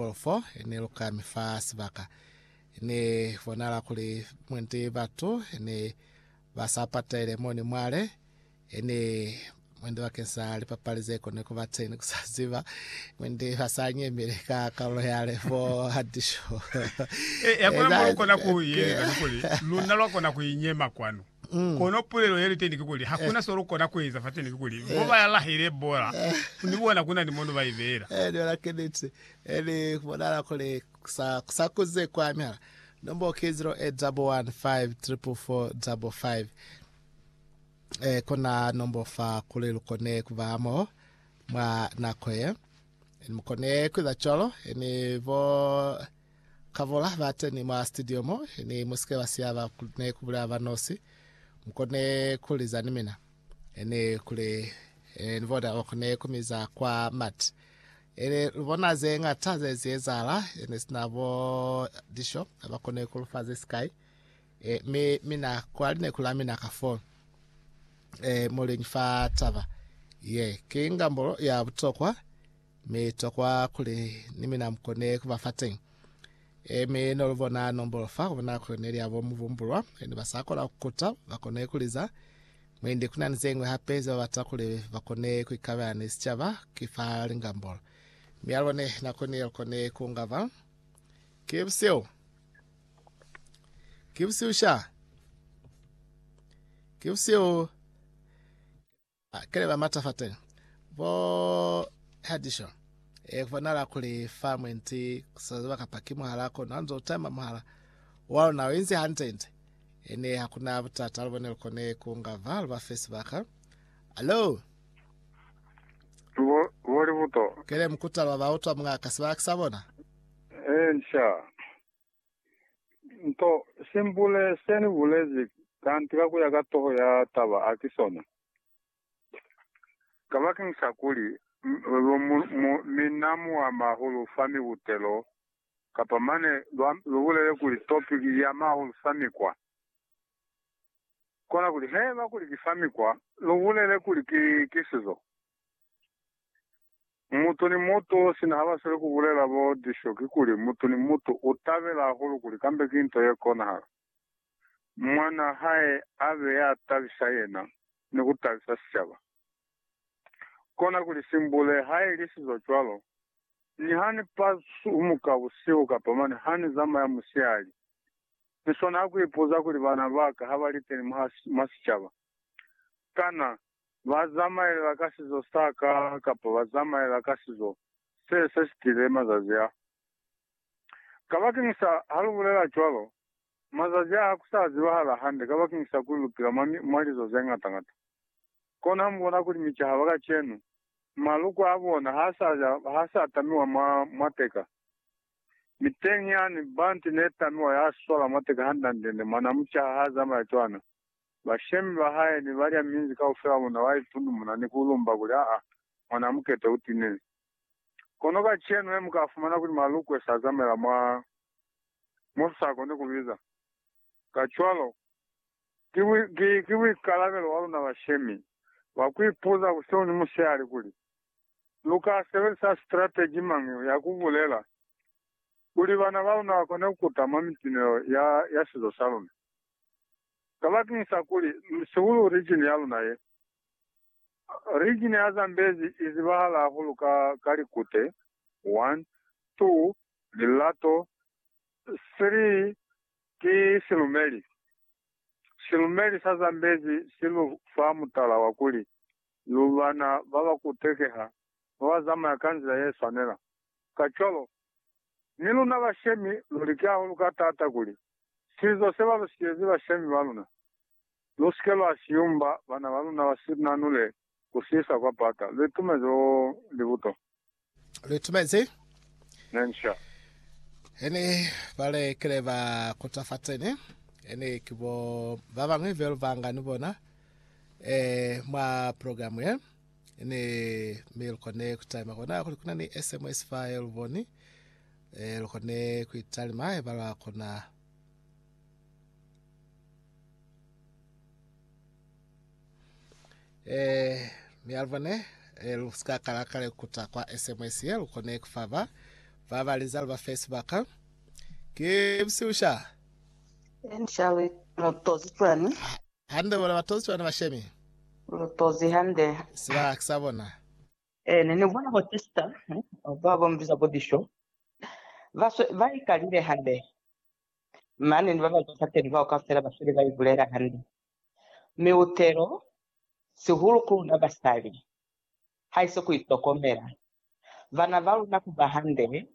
Polo fo ne lu kami fa sibaka, ne bonala kuli mwendi batu ne ba sa patalele moni mwale, ne mwendi bakeni sa lipapali ze koni ku ba teni ku sa ziba, mwendi ba sa nyemeli ka kalulo yale fo hadisho. E, e, hakuna mo lu kona ku i eza, ni kuli luna lwa kona ku i nyema kwanu. Mm. Kono pulelo ye liteni kikuli, hakuna so lukona kueza fateni kikuli, eh. mo bayalahile bola, ni bona kunani mo no baibeela. Eh, ni bona kiniti. Eh, ni bonala kuli sa, sa kuze kwa mihala. Nombo ki 0811544555. Eh, kona nombo fa kuli lukone kuba mo mwa nako ye. Ni mukone kuiza cwalo, ni bo Kavula ba teni mwa studio mo, ni musike ba siya ba kune ku bulela ba nosi. Mukone ku liza ni mina. Ene kule, eh, ni bona okone ku miza kwa mati. Ene lu bona ze ngata ze zi ezahala, ene sina bo disho, ba kone ku lufa ze sikai. Eh, mi mina kwa lineku la mina ka fo, eh, muliñi fa taba ye, ki ngambolo ya butokwa. Mi to kwa kuli ni mina mukone kuba fateñi. E, mi no lubona nombolo fa kubona kuli neli abo mubumbulwa, ni basa kona kukuta, bakone kuliza. Mwendi kuna ni zeñwi hape ze babata kuli bakone kuikabela ni sicaba, ki fa lingambolo. Mi alubone nakoni ye lukone kuungaba. Ki busihu. Ki busihu sha. Ki busihu. Ha kile ba mata fateni bo Herdishaw e bonala kuli fa mwenti kuseza ziba kapa ki muhala kono hanzo utama muhala wa luna o inzi hante nte ene hakuna butata alubone lukone kunga va luba fe sibaka alo Bo, bo libuto. kele mukuta lwa ba utwa mungaka sibaka kisabona Eh, nsha. Nto simbule se ni bulezi kanti ka kuya ka toho ya taba a ki sona. Kabakeng sa kuli lu mu, mu, mi na mu ama hahulu fa mibutelo, kapa mane lwa, lu bulele kuli topiki i ama hahulu fa mikwa. Kona kuli, haiba kuli ki fa mikwa, lu bulele kuli ki, ki sizo. Mutu ni mutu sina habasweli kubulela bo Disho kikuli, mutu ni mutu utabela hahulu kuli kambe ki nto yekonahala mwanaa hae abe yatabisa yena ni kutabisa sicaba. Kona kuli simbule haili sizo cwalo, ni hani pasumuka busihu kapa mane hani zamaya musihali, niswana hakuipuza kuli bana baka habaliteni mwa sicaba. Kana ba zamaela ka sizo sa ka kapa ba zamaela ka sizo se se sitile mazazi a? Kabakeñisa ha lu bulela cwalo, mazazi a ha ku sa zibahala hande kabakeñisa kuli lu pila mwa, mwa lizo ze ngata-ngata. Kono ha mu bona kuli micaha ba kacenu, maluko a bona ha sa, ha sa tamiwa mwa, mwa teka. Mi teñi yani, banti ne tamiwa ya swala mwa teka hande-hande ne mwa na mucaha ha zamaya cwana. Bashemi ba hae ne ba lya minzi kaufela muna wa ipundumuna ni ku lumba kuli, Aa, mwanaa mukete u tinile. Kono kacenu he mu ka fumana kuli malukwe sa zamela mwa mo lu sa koni ku biza. Kacwalo, ki, ki, ki buikalabelo bwa luna bashemi ba ku ipuza busihu ni musihali kuli, Lu ka sebelisa strategy mañi ya ku bulela kuli bana ba luna ba kone ku kuta mwa mitinelo ya, ya sizo sa luna? Kabakeñisa kuli, sihulu region ya luna ye. Region ya Zambezi i zibahala hahulu ka, ka likute, one, two, lilato, three, ki silumeli. Silumeli sa Zambezi si lu fa mutala wa kuli, lu bana ba ba kutekeha, ba ba zamaya ka nzila ye swanela. Kacwalo, Mi luna bashemi lu liki hahulu ka taata kuli sizo se ba lu siyezi bashemi ba luna, lu si ke lwa si yumba bana ba luna ba si nanule ku si isa kwa pata. Lu itumezi oh, libuto. Lu itumezi. Ne ni sha. Ini ba le kile ba kuta fateni, ini ki bo ba bañwi be lu banga ni bona, eh, mwa program ye. ne mi lukone kutalima kona kuli kuna ni sms fa ye luboni e lukone kuitalima haiba lwa kona e mi alubone e lu ska kala kale kuta kwa sms ye lukone kufaba ba ba liza ba facebook ke bisiusha Enshali mutozi twani Hande bona batozi bana bashemi. Lu tozi hande. Sibaka sa bona. Ee, ne ni bona bo Chester, ba ba mu biza bo Disho, ba swe, ba ikalile hande. Mane ni ba ba zwa fateni bao kaufela ba sweli ba ibulela hande. Mi utelo, sihulu ku luna basali, haise ku itokomela. Bana ba luna ku ba hande,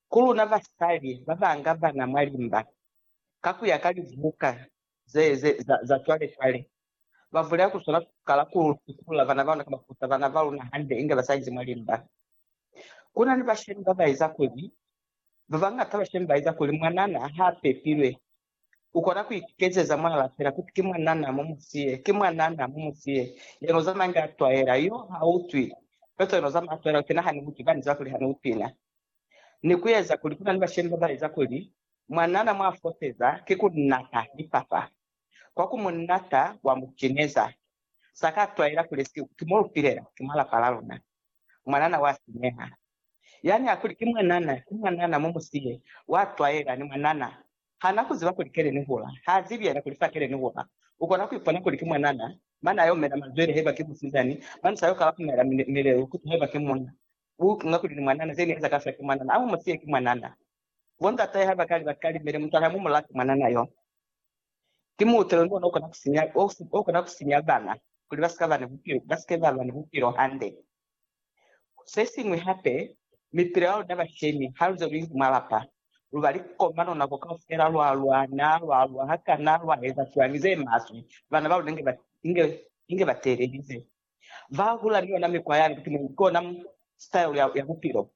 ku luna basali ba ba nga bana mwa limba, ka ku ya ka libuka ze, ze, za, za cwale, cwale. Ba vulela ku swana kala ku tukula bana ba luna, ka ba kuta bana ba luna hande inge ba sa inzi mwa limba. Kuna ni bashemi ba ba eza kuli, ba bañata bashemi ba eza kuli, mwanana ha pepilwe. U kona ku ikezeza mwanana fela, kuti, Ki mwanana, mu mu siye. Ki mwanana, mu mu siye. Yena u zama inge a twaela. Yo, ha utwi. Feela cwale yena u zama a twaela, u kena ha ni utwi, ba ni ziba kuli ha ni utwi na. ni ku eza kuli ku na ni bashemi ba ba eza kuli mwanana mwa foseza ki ku nata lipapa kwa ku mu nata wa mu cineza. Sa ka twaela kuli esiku ki mo lu pilela, ki mwa lapa la luna. Mwanana wa sinyeha. Yani a kuli ki mwanana, ki mwanana, mu mu siye, wa twaela, ni mwanana. Ha na ku ziba kuli kele ni hula. Ha zibi yena kuli fa kele ni hula. U kona ku ipona kuli ki mwanana, mane a yo mena mazwele haiba ki musizani, mane sa yo kala ku mela milelu ku zwa haiba ki munna. Ku nga kuli ni mwanana, ze ni eza kafela ki mwanana. A mu mu siye, ki mwanana. Bo ndatahe ha ba kali ba kalimele, mutala ha mu mu lati mwanana yo. Ki muutelo ni ona o kona ku sinya, o kona ku sinya bana kuli ba si ka ba ni bupilo, ba si ke ba ba ni bupilo hande. Se siñwi hape, mipilo ya luna bashemi, ha lu ze lu inzi mwa lapa, lu ba likomano nako kaufela, lwa lwana, lwa lwa hakana, lwa eza cwañi ze maswe, bana ba luna inge ba, inge, inge ba teelelize. ba hula ni yona mikwa yani kuti ne i kona style ya, ya bupilo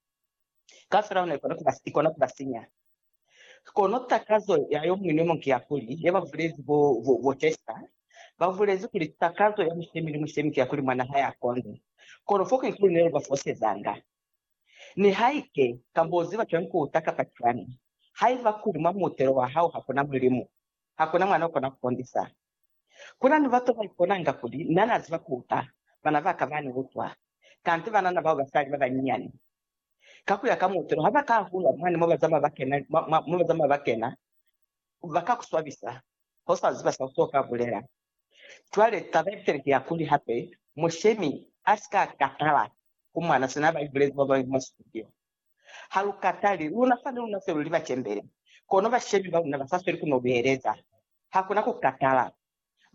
kaufela ona ikona kuba, ikona kuba sinya. Kono takazo ya yo muñwi ni yo muñwi ki ya kuli, ye ba bulezi bo, bo, bo Chester ba bulezi kuli takazo ya mushemi ni mushemi ki ya kuli mwana hae a konde. Kono fo ki kuli ne lu ba fosezanga. Nihaike ka bo ziba cwañi ku uta kapa cwañi, haiba kuli mwa muutelo wa hao ha ku na Mulimu, ha ku na mwana o kona ku kondisa. Kuna ni batu baiponanga kuli na na ziba kuuta bana baka bani butwa, kanti banana bao basali babanyinyani. Ka kuya ka muutelo, haba ka hulwa mwani mobazama bakena, baka kuswabisa hosa ziba sa uto ka bulela. Cwale taba yabitali ki ya kuli hape mushemi asika katala kumana sina baibulezi bababali mwa situdio. Ha lu katali, luna fani luna se lu li bacembele, kono bashemi ba luna ba sa sweli ku no lu heleza. Ha ku na ku katala,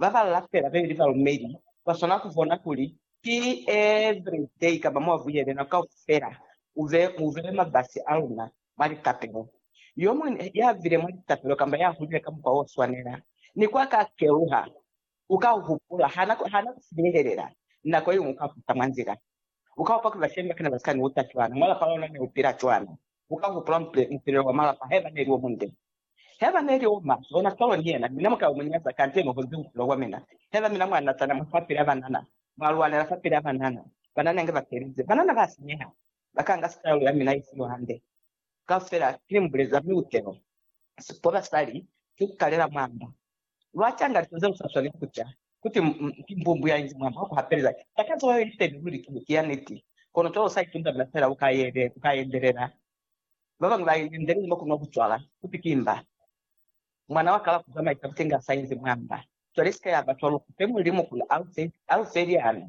ba ba lapela be li balumeli ba swanela ku bona kuli ki every day kamba mwa vuyele nako kaufela u be mu bele mabasi a luna mwa litapelo. Yo muñwi ya bile mwa litapelo kamba ya hulile ka mukwa o swanela, ni kwa ka keluha U ka hupula, ha na, ha na ku sinehelela. Nako yeñwi u ka kuta mwa nzila. U ka hopa kuli bashemi ba kana ba si ka ni uta cwana, mwa lapa lona ne u pila cwana. U ka hupula mupilelo wa malapa haiba ne li o munde. Haiba ne li o maswe, ona cwalo ni yena, mina mu ka yo mu nyaza kante no honzi bupilo bwa mina. Haiba mina mwa natana mwa fapil'a banana, mwa lwanela fapil'a banana, banana inge ba felize. Banana ba sinyeha, ba ka nga sitayolo ya mina ye si yo hande. Kaufela ki ni mu buleza, mi u te no si ko basali, ki ku kalela mwa mba. Lwa canga lika ze lu sa swaneli ku ca, kuti, Ki mbumbu ya inzi mwa mwa ku hapelela. Takazo ya yona feni luli ki ne, ki ya niti. Kono cwalo u sa itundamela fela, u ka yele, u ka yendelela. Ba bañwi ba yendelile mwa ku nwa bucwala, kuti ki mba. Mwana wa ka lwa ku zamaisa butenga sa inzi mwa mba. Cwale sika ya ba cwalo, ku fe Mulimu kuli a lu fe, a lu fe liana,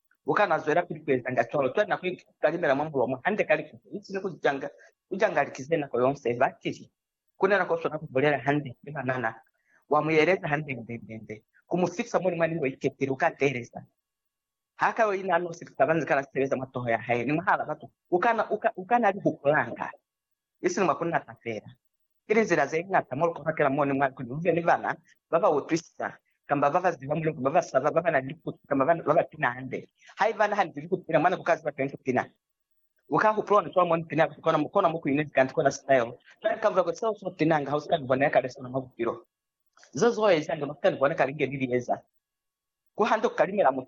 U ka na zwelapili ku ezanga cwalo. Cwale na koni ku kalimela mwa mulomo hande ka likutu, isini ku canga, ku canga liti ze nako yonse. Ba tili, Ku na na ko swana ku bulela hande ni banana. Wa mu yeleza hande nde, nde, nde, ku mu fitisa muli mwa ni yo ikepile. U ka teeleza. Ha ka yo ina nosi, ku ka ba ni zikala ze sebeza mwa toho ya hae ni mwahal'a batu. U ka na, u ka, u ka na li hupulanga. isiñi mwa ku nata fela. Ki linzila ze ñata mo lu ka bakela moni mwa kuli lu be ni bana ba ba utwisisa, kamba ba ba ziba Mulimu, ba ba saba, ba ba na ni likutu, kamba ba, ba ba pina hande. Haiba na hanezi liku pina mwa ne ku ka ziba teni ku pina, u ka hupula ona cwalo mo ni pina ku kona, mo kona mo ku inezi kanti kona sitaelo. Cwale ka mulaho, seo so pinanga ha u si ka ni bona ya kale sona mwa bupilo. Ze zo ezanga no si ka ni bona kale nge ni li eza. Ku hande ku kalimela mutu.